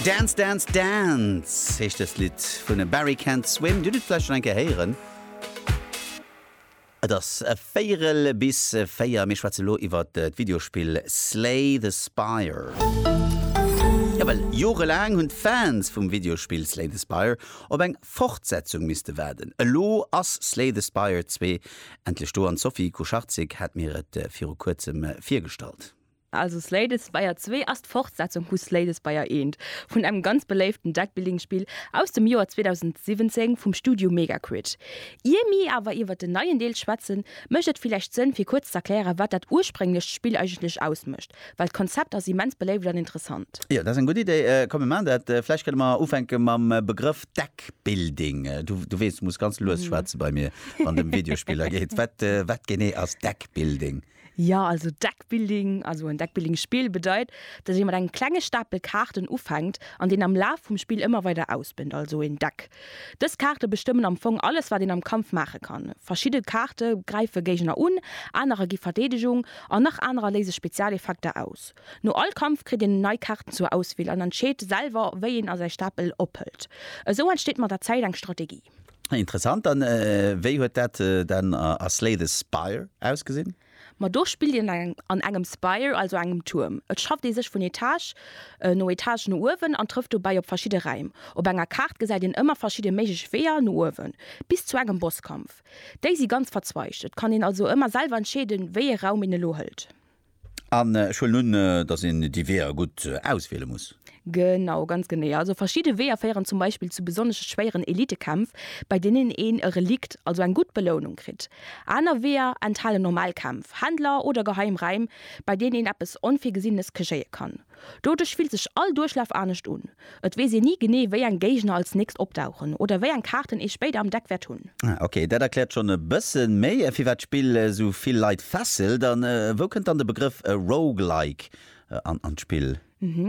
Dance Dance Dance heescht dëst Lidd vun e Barry Can't Swim. Dir hutt et vläicht schonn eng Kéier héieren. Et ass e Véierel bis véier. Mir schwätze lo iwwer d'Videospill Slay the Spire. Jo, well jorelaang hunn d'Fans vum Videospill Slay the Spire op eng Fortsetzung misste waarden. Elo ass Slay the Spire zwee endlech do an d'Sophie Kucharczyk hat mir et viru kuerzem virgestallt. Also Slay-the-Spire zwee ass d'Fortsetzung vu Slay-the-Spire eent, vun engem ganz beléiften Deckbuilding-Spill aus dem Joer 2017 vum Studio Megaquid. Ier mi awer iwwert den neien Deel schwätzen, mécht et villäicht Sënn fir kuerz z'erklären, wat dat ursprénglecht Spill eigentlech ausmécht, well d'Konzept ass immens beléift an interessant. Jo, dat ass eng gutt Idee. Komm mir maachen dat. Vläicht kënne mer ufänke mam Begrëff Deckbuilding. Du weess, du muss ganz lues schwätze bei mir, wann et ëm Videospiller geet. Wat genee ass Deckbuilding? Jo, also Deckbuilding, also en Deckbuilding-Spill bedeit, dass ee mat engem klenge Stapel Kaarten ufänkt an deen am Laf vum Spill ëmmer weider ausbënnt, also een Deck. Dës Kaarte bestëmmen am Fong alles, wat een am Kampf maache kann. Verschidde Kaarte gräife Géigner un, anerer gi Verdeedegung an nach anerer léise Spezialeffekter aus. No all Kampf kritt een nei Kaarten zur Auswiel an entscheet selwer, wéi een a säi Stapel ophëlt. Esou entsteet mat der Zäit eng Strategie. Interessant, an wéi huet dat dann a Slay the Spire ausgesinn? Ma do spillt een an engem Spire, also engem Tuerm. Et schafft ee sech vun Etage no Etage no uewen an trëfft dobäi op verschidde Räim. Op enger Kaart gesäit een ëmmer verschidde méiglech Weeër no uewen, bis zu engem Bosskampf. Déi si ganz verzweigt, et kann een also ëmmer selwer entscheeden, wéi ee Raum een elo hëlt. An ech huelen un, dass een déi Weeër gutt auswiele muss. Genau, ganz genee. Also verschidde Weeër féieren zum Beispill zu besonnesch schwéieren Elitekämpf, bei deenen een e Relikt, also eng gutt Belounung, kritt. Aner Weeër enthalen normal Kämpf, Händler oder geheim Räim, bei deenen een eppes Onvirgesinnenes kegéie kann. Doduerch fillt sech all Duerchlaf anescht un. Et weess een ni genee, wéi eng Géigner als nächst opdauchen oder wéi eng Kaarten ee spéider am Deck wäert hunn. Ah ok, dat erkläert schonn e bëssen méi firwat d'Spill sou vill Leit fesselt. An wou kënnt dann de Begrëff Roguelike an d'Spill?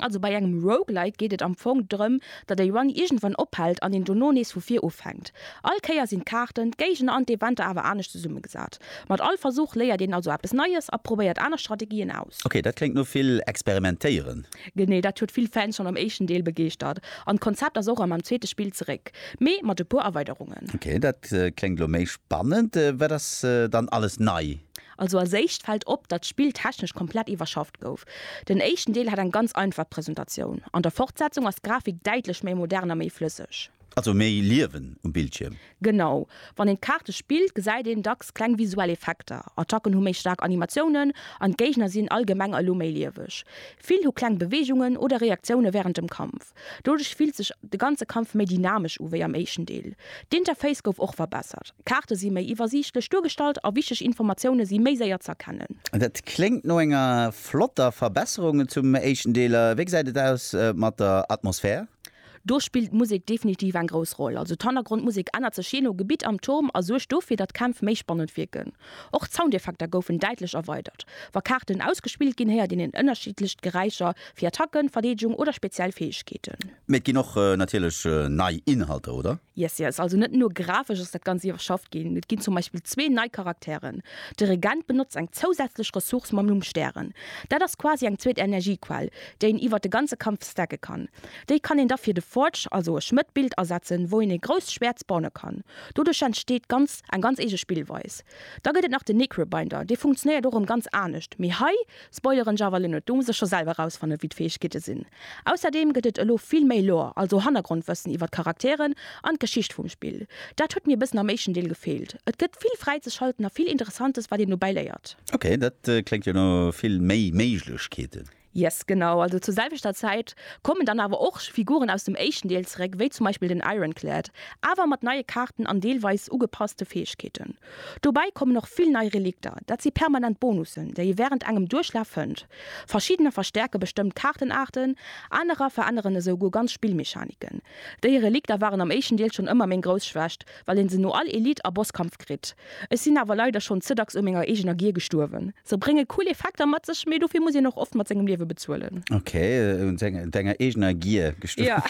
Also bei engem Roguelike geet et am Fong drëm, datt e Run iergendwann ophält an een dono nees vu vir ufänkt. All Kéier sinn d'Kaarten, d'Géigner an d'Eventer awer anescht zesummegesat. Mat all Versuch léiert een also eppes Neies a probéiert aner Strategien aus. Ok, dat kléngt no vill experimentéieren. Genee dat huet vill Fans schonn am éischten Deel begeeschtert an d'Konzept ass och am am zweete Spill zeréck, mee mat e puer Erweiderungen. Ok, dat kléngt elo méi spannend. Wat ass dann alles nei? Also als éischt fält op, datt d'Spill technesch komplett iwwerschafft gouf. Den éischten Deel hat eng ganz einfach Presentatioun, an der Fortsetzung ass d'Grafik däitlech méi modern a méi flësseg. Also méi Liewen um Bildschierm. Genau. Wann een d'Kaarte spillt, gesäit een dacks kleng visuell Effekter. Attacken hu méi staark Animatiounen an d'Géigner sinn allgemeng elo méi lieweg. Vill hu kleng Beweegungen oder Reaktioune wärend dem Kampf. Doduerch fillt sech de ganze Kampf méi dynamesch u wéi am éischten Deel. D'Interface gouf och verbessert. D'Kaarte si méi iwwersiichtlech duergestallt a wichteg Informatioune si méi séier z'erkennen. Dat kléngt no enger flotter Verbesserung zum éischten Deel. Wéi gesäit et aus mat der Atmosphär? Do spillt d'Musek definitiv eng grouss Roll. Also d'Hannergrondmusek ännert sech jee no Gebitt am Turm a suergt dofir, datt d'Kämpf méi spannend wierken. Och d'Soundeffekter goufen däitlech erweidert. Wa Kaarten ausgespillt ginn, héiert een en ënnerschiddlecht Geräischer fir Attacken, Verdeedegung oder speziell Fäegkeeten. Mee et ginn och natierlech nei Inhalter, oder? Yes yes, also net nur grafesch ass dat Ganzt iwwerschafft ginn, et ginn zum Beispill zwee nei Charakteren. De Regent benotzt eng zousätzlech Ressource mam Numm Stären. Dat ass quasi eng zweet Energiequell, déi een iwwert de ganze Kampf stacke kann. Déi kann een da fir de Forge, also e Schmëtt-Bild, asetzen, wou een e grousst Schwäert spawne kann. Doduerch entsteet ganz eng ganz eege Spillweis. Da gëtt et nach de Necrobinder, dee funktionéiert och erëm ganz anescht, mee hei Spoileren, Java Linux, do muss e scho selwer rausfannen, wéi d'Fäegkeete sinn. Ausserdeem gëtt et elo vill méi Lore, also Hannergrondwëssen iwwer d'Charakteren an d'Geschicht vum Spill. Dat huet mir e bëssen am éischten Deel gefeelt. Et gëtt vill fräizeschalten a vill Interessantes, wat een dobäi léiert. Ok, dat kléngt jo no vill méi Méiglechkeeten. Yes, genau. Also zur selwechter Zäit kommen dann awer och Figuren aus dem éischten Deel zeréck, wéi zum Beispill den Ironclad, awer mat neie Kaarten an deelweis ugepasste Fäegkeeten. Dobäi kommen och vill nei Relikter, dat si permanent Bonussen, déi ee wärend engem Duerchlaf fënnt. Verschiddener verstäerke bestëmmt Kaartenaarten, anerer veränneren esou guer ganz Spillmechaniken. Déi Relikter waren am éischten Deel schonn ëmmer meng grouss Schwächt, well een se no all Elite a Bosskampf kritt. Ech sinn awer leider schonn ze dacks u menger eegener Gier gestuerwen. Se brénge cool Effekter mat sech, mee dofir muss een och oft mat sengem Liewe bezuelen. Ok, un denger eegener Gier gestuerwen.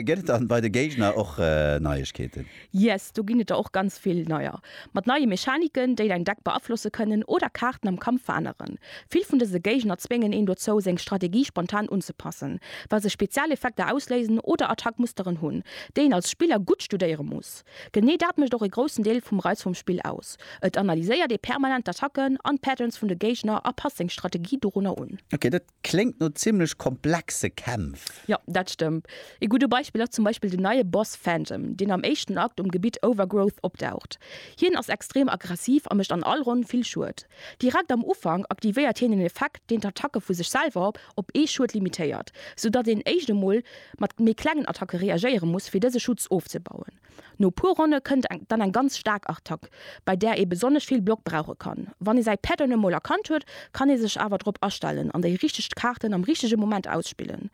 Gëtt et dann bei de Géigner och Neiegkeeten? Yes, do ginn et der och ganz vill neier. Mat neie Mechaniken, déi däin Deck beaflosse kënnen oder Kaarten am Kampf veränneren. Vill vun dëse Géigner zwéngen een dozou, seng Strategie spontan unzepassen, well se speziell Effekter ausléisen oder Attackmusteren hunn, déi een als Spiller gutt studéiere muss. Genee dat mécht och e groussen Deel vum Reiz vum Spill aus. Et analyséiert ee permanent d'Attacken an d'Patterns vun de Géigner a passt seng Strategie dorunner un. Ok, dat Kléngt no zimlech komplexe Kämpf. Jo, dat stëmmt. Ee gudde Beispill ass zum Beispill den neie Boss Phantom, deen am éischten Akt um Gebitt Overgrowth opdaucht. Hien ass extrem aggressiv a mécht an all Ronn vill Schued. Direkt am Ufank aktivéiert hien en Effekt, deen d'Attacke vu sech selwer op ee Schued limitéiert, soudatt een éischt emol mat méi klengen Attacke reagéiere muss, fir dëse Schutz ofzebauen. No puer Ronne kënnt dann eng ganz staark Attack, bei där ee besonnesch vill Block brauche kann. Wann ee säi Päerd dann emol erkannt huet, kann ee sech awer drop astellen an déi richteg Kaarten am richtege Moment ausspillen.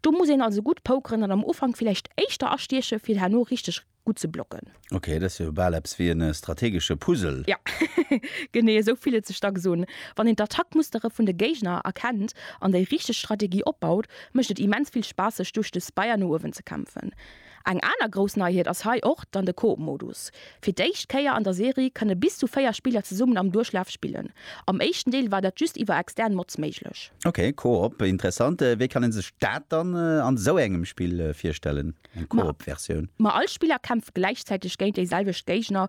Do muss een also gutt pokeren an am Ufank villäicht éischter astieche fir herno richteg gutt ze blocken. Ok, dat ass jo bal eppes wéi e strategesche Puzzle. Jo, genee esou fillt et sech dacks un. Wann een d'Attackmustere vun de Géigner erkennt an déi richteg Strategie opbaut, mécht et immens vill Spaass sech duerch de Spire no uewen ze kämpfen. Eng aner grouss Neiheet ass hei och dann de Coop-Modus. Fir d'éischt Kéier an der Serie kënne bis zu 4 Spiller zesummen am Duerchlaf spillen. Am éischten Deel war dat just iwwer extern Mods méiglech. Ok, Coop, interessant. Wéi kann een sech dat dann an esou engem Spill virstellen, eng Coop-Versioun? Ma all Spiller kämpft gläichzäiteg géint déi selwecht Géigner.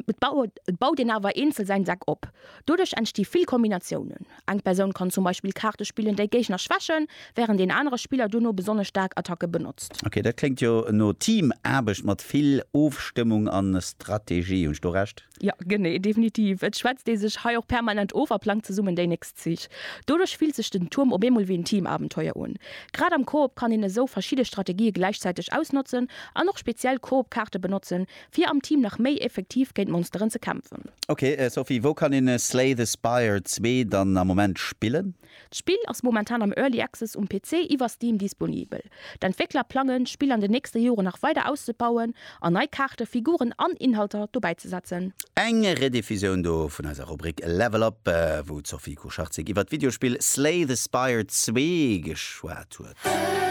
Et baut een awer eenzel säin Deck op. Doduerch entsti vill Kombinatiounen. Eng Persoun kann zum Beispill Kaarte spillen, déi Géigner schwächen, wärend een anere Spiller dono besonnesch staark Attacke benotzt. Ok, dat kléngt jo no Teamaarbecht mat vill Ofstëmmung an Strategie. Hunn ech do Recht? Jo, genee, definitiv. Et schwätzt ee sech hei och permanent of a plangt zesummen déi nächst Zich. Doduerch fillt sech den Tuerm op eemol wéi en Teamabenteuer un. Grad am Koop kann een esou verschidde Strategië gläichzäiteg ausnotzen an och speziell Koop-Kaarte benotzen, Fir am Team nach méi effektiv géint Monsteren ze kämpfen. Ok Sophie, wou kann een Slay the Spire 2 dann am Moment spillen? D'Spill ass momentan am Early Access um PC iwwer Steam disponibel. D'Entwéckler plangen, d'Spill an den nächste Joren nach weider auszebauen an nei Kaarten, Figuren an Inhalter dobäizesetzen. Eng Rediffusioun do vun eiser Rubrik Level Up, wou d'Sophie Kucharczyk iwwer d'Videospill Slay the Spire 2 geschwat huet.